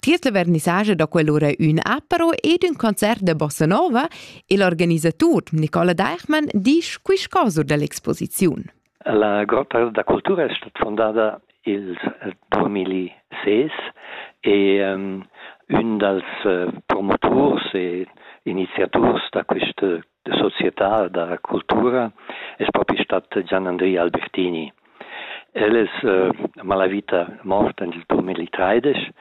Tiers la vernissage da quell'ora ün apero ed ün concert da bossa nova e l'organisatur Nicola Deichmann disch quist caso dall'exposiziun. La grotta da cultura è stata fondada il 2006 e um, ün dals uh, promoturs e iniziaturs da questa da società da cultura es propi stat Gian Andri Albertini. El es uh, malavita mort nel 2013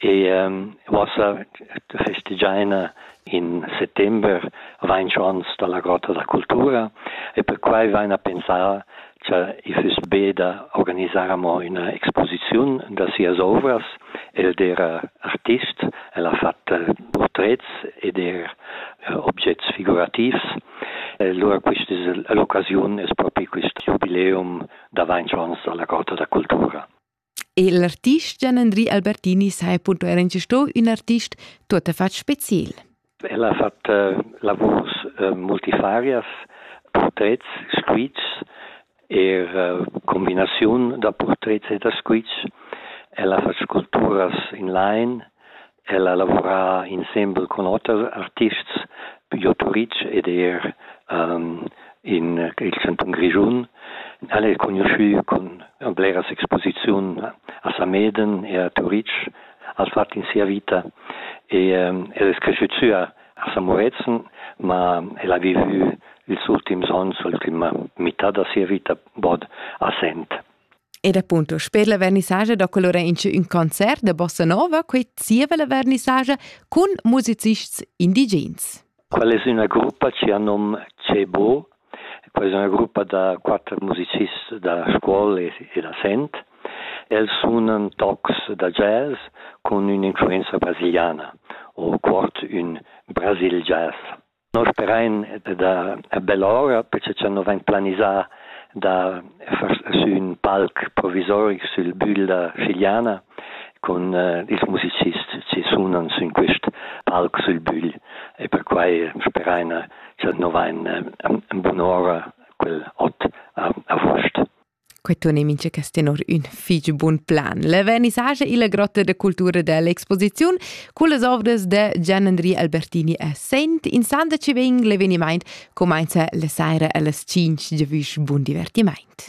e um, uossa festegiaina in settember vain ons dalla Grotta da Cultura e per quai vaina pensà Cha i füss be da organisar amo üna exposiziun da sias ouvras. El d'eira artist, el ha fat purtrets ed eir objets figurativs. E lura quist es l'occasiun, es propi quist giubileum d'avainchants da la Corta da cultura. El artist Gian-Andri Albertini sa è punto era sto un artist tutto fatg special. El ha fatto eh, lavurs eh, multifarias, portrets, squitschs e eh, combinaziun da portrets e da squitsch. El ha fatto sculpturas in line El ha lavurà insembel cun oters artists pigl Otto Ritsch ed er um, in il chantun Grischun. El è conosciù con bleras exposiziun a Sameden e a Turitg, als fat in sia vita. E um, el è cresciutsù a, a Samorezen, ma el ha vivu ils ultims onns, l'ultima mità da sia vita, bod a Sent. Ed appunto, sper la vernissage da colora in ün concert da bossa nova, quei zieva la vernissage cun musicists indigens. Quella es üna gruppa chi ha nom Cebo, quella es üna gruppa da quatter musicists da scuol e da sent. Els sunan tocs da jazz con ün'influenza brasiliana o cuort ün Brasil Jazz. Nos terrain è da a bell'ora perche cha no vegn planisà da far sü ün palc provisoric sül bügl da Schigliana cun ils musicists chi sunan sün quist palc sül bügl e perquai speraina cha'l no vain ün bun'ora quel ot a avuost. Quei tun ei mincha cas tenor ün fich bun plan. La vernissagia illa grotta da cultura dell'exposiziun cullas ovras da Gianandri Albertini a Sent insandaci vegn l'evenimaint cumainza la saira allas 5 giavüsch. Bun divertimaint!